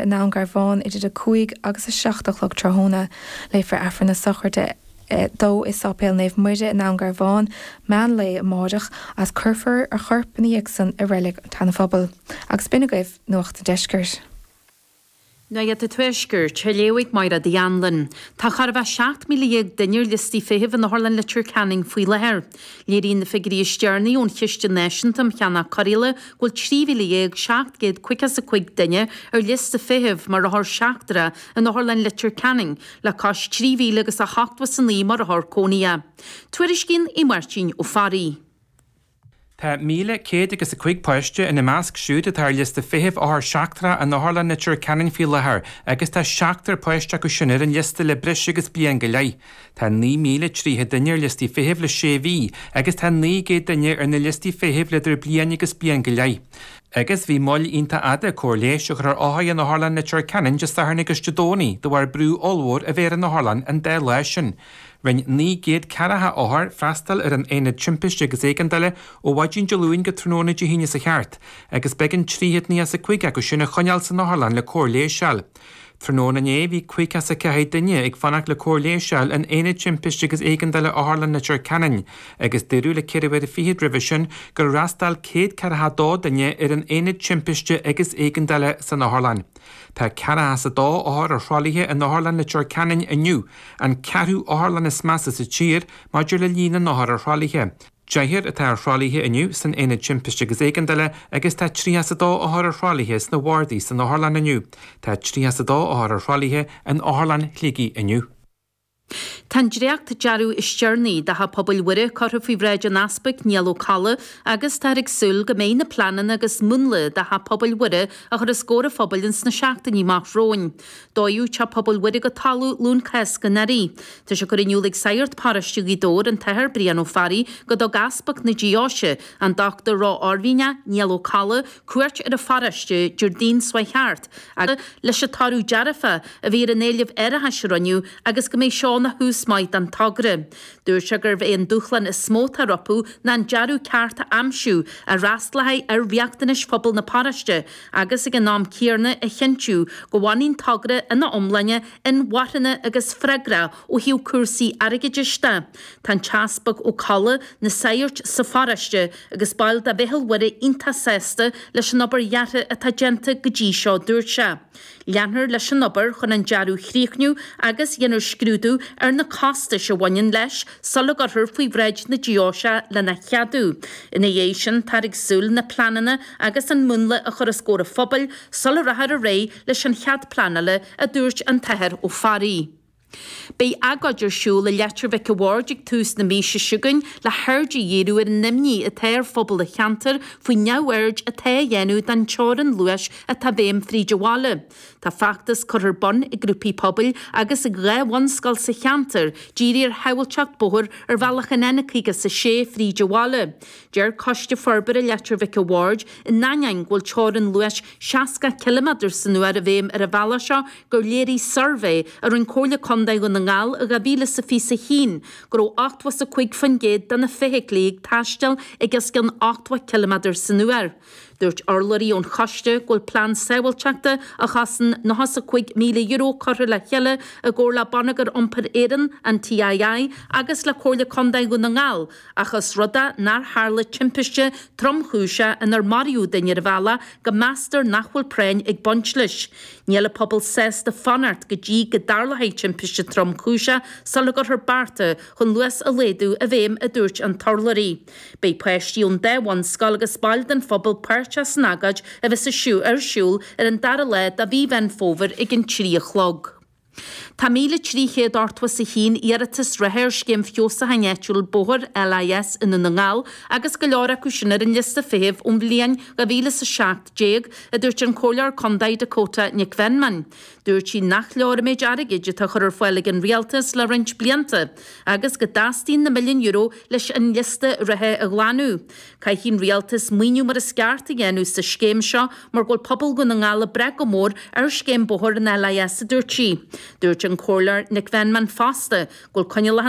I nDún Garbhán idir a cúig agus a seacht a chlog tráthnóna, léifear Aifreann na Sochraide dó i Sáipéal Naomh Muire i nDún Garbhán, meán lae amáireach, agus cuirfear a chorp ina dhiaidh san i Reilig an tSeanaphobail. Agus b'in agaibh Nuacht an Deiscirt. Nuacht an Tuaiscirt, léamh ag Máire D. Anluain. Tá chóir a bheith 17,000 duine ar liostaí feithimh in Otharlann Leitir Ceanainn faoi láthair. Léiríonn na figiuirí is deireanaí ón Chiste Náisiúnta um Cheannach Cóireála go bhfuil 13,700 caoga is a 5 duine ar liosta feithimh mar othar seachtracha in Otharlann Leitir Ceanainn, le cois 3,000 agus ochtó is a 9 mar othar cónaithe. Tuairiscíonn Aodh Máirtín Ó Fearraigh. Tá 1,000 céad agus a cúig páiste ina measc siúd atá ar liosta feithimh othar seachtracha in Otharlann Leitir Ceanainn faoi láthair agus tá seachtar páiste acu sin ar an liosta le breis agus bliain go leith. Tá naoi míle tríocha duine ar liostaí feithimh le sé mhí agus tá naoi gcéad duine ar na liostaí feithimh le idir bliain agus bliain go leith. Agus bhí moill iontach fhada cóir leighis a chur ar othair in Otharlann Leitir Ceanainn Dé Sathairn agus Dé Domhnaigh de bharr brú ollmhór a bheith ar an otharlann an dá lá sin. Rinn naoi gcéad ceathracha othar freastal ar an Aonad Timpiste agus Éigeandála ó mhaidin Dé Luain go tráthnóna Dé hAoine seo thart agus b'éigean trí chéad naocha is a cúig acu sin a choinneáil san otharlann le cóir leighis a fháil. Tráthnóna inné bhí caoga is a ceathair duine ag fanacht le cóir leighis a fháil in Aonad Timpiste agus Éigeandála Otharlann Leitir Ceanainn agus dúradh le ceithre uaire fichead roimhe sin gur fhreastail céad ceathracha dó duine ar an Aonad Timpiste agus Éigeandála san otharlann. Tá ceathracha is a dó othar ar thralaithe in Otharlann Leitir Ceanainn inniu, an ceathrú otharlann is measa sa tír maidir le líon na n-othar ar thralaithe. Deichniúr atá ar thralaithe inniu san Aonad Timpiste agus Éigeandála agus tá 32 othar ar thralaithe sna Bhardaí san Otharlann inniu. Tá 32 othar ar thralaithe in Otharlann Shligigh inniu. Tá an dréachtdearadh is deireanaí de Theach Pobail Mhuire curtha faoi bhráid an Easpaig Niall Ó Colla agus táthar ag súil go mbeidh na pleananna agus múnla de Theach Pobail Mhuire á chur os comhair an phobail ins na seachtainí amach romhainn. Dódh Teach Pobail Mhuire go talamh Luan Cásca anuraidh. Tá sé curtha in iúl ag Sagart Paróiste Ghaoth Dobhair, an tAthair Brian Ó Fearraigh, go dtug Easpag na Deoise, an Dr Ró-Oirmhinneach Niall Ó Colla, cuairt ar an pharóiste Déardaoin seo thart leis an toradh dearfa a bhí ar an éileamh árachais a rinneadh, agus go mbeidh seo ina thús maith don togra. Dúirt sé gurbh é an dúshlán is mó atá rompu ná an dearadh ceart a aimsiú a fhreastlóidh ar riachtanais phobal na paróiste, agus ag an am céarna a chinntiú go bhfanann an togra ina iomláine inmharthana agus freagrach ó thaobh cúrsaí airgeadais de. Tá an tEaspag Ó Colla, na sagairt sa pharóiste agus baill de Mheitheal Mhuire iontach sásta leis an obair dheartha atá déanta go dtí seo, dúirt sé. Leanfar leis an obair chun an dearadh a chríochnú agus déanfar scrúdú ar na costais a bhaineann leis sula gcuirfear faoi bhráid na deoise lena cheadú. Ina dhiaidh sin táthar ag súil na pleananna agus an múnla a chur os comhair an phobail sula rachfar ar aghaidh leis an chead pleanála, a dúirt an tAthair Ó Fearraigh. Beidh agóid ar siúl i Leitir Mhic a' Bhaird ag tús na míosa seo chugainn le haird a dhíriú ar an imní atá ar phobal an cheantair faoin neamhaird atá á dhéanamh den teorainn luais atá i bhfeidhm fríd an bhaile. Tá feachtas curtha ar bun ag grúpaí pobail agus ag dhá bhunscoil sa cheantar dírithe ar shábhailteacht bóthair ar bhealach an N56 fríd an bhaile. Deir Coiste Forbartha Leitir Mhic a' Bhaird, in ainneoin go bhfuil teorainn luais 60 ciliméadar san uair i bhfeidhm ar an bhealach seo, gur léirigh suirbhé a rinne Comhairle Contae Dhún na nGall i 2021 go raibh 85% de na feithiclí ag taisteal ag os cionn 80 ciliméadar san uair. Dúirt urlabhraí ón choiste go bhfuil plean sábháilteachta a chosain níos mó ná €5,000 curtha le chéile i gcomhar le Bonneagar Iompair Éireann, an TII, agus le Comhairle Contae Dhún na nGall, Ach ós rud é nár tharla timpiste tromchúiseach inar maraíodh duine ar an bhealach go meastar nach bhfuil práinn ag baint leis. Níl an pobal sásta fanacht go dtí go dtarlóidh timpiste tromchúiseach sula gcuirfear bearta chun luas a laghdú i bhfeidhm, a dúirt an t-urlabhraí. Beidh páistí ón dá bhunscoil agus baill den phobal páirteach san agóid a bheas ar siúl ar an dara lá de Mhí Mheán Fómhair ag an trí a chlog. Tá 1,381 iarratas reatha ar scéim feabhsúcháin áitiúil bóthair, LIS, i nDún na nGall, agus go leor acu sin ar an liosta feithimh ón bhliain dhá mhíle is a seacht déag, a dúirt an Comhairleoir Contae Dakota Nic Mheanman. Dúirt sí nach leor an méid airgid atá á chur ar fáil ag an Rialtas le roinnt blianta, agus go dteastaíonn na milliúin euro leis an liosta reatha a ghlanadh. Caithfidh an Rialtas maoiniú mar is ceart a dhéanamh sa scéim seo mar go bhfuil pobal Dhún na nGall ag brath go mór ar scéim bóthair an LIS a dúirt sí. Dúirt an Comhairleoir Nic Mheanman fosta go bhfuil coinníollacha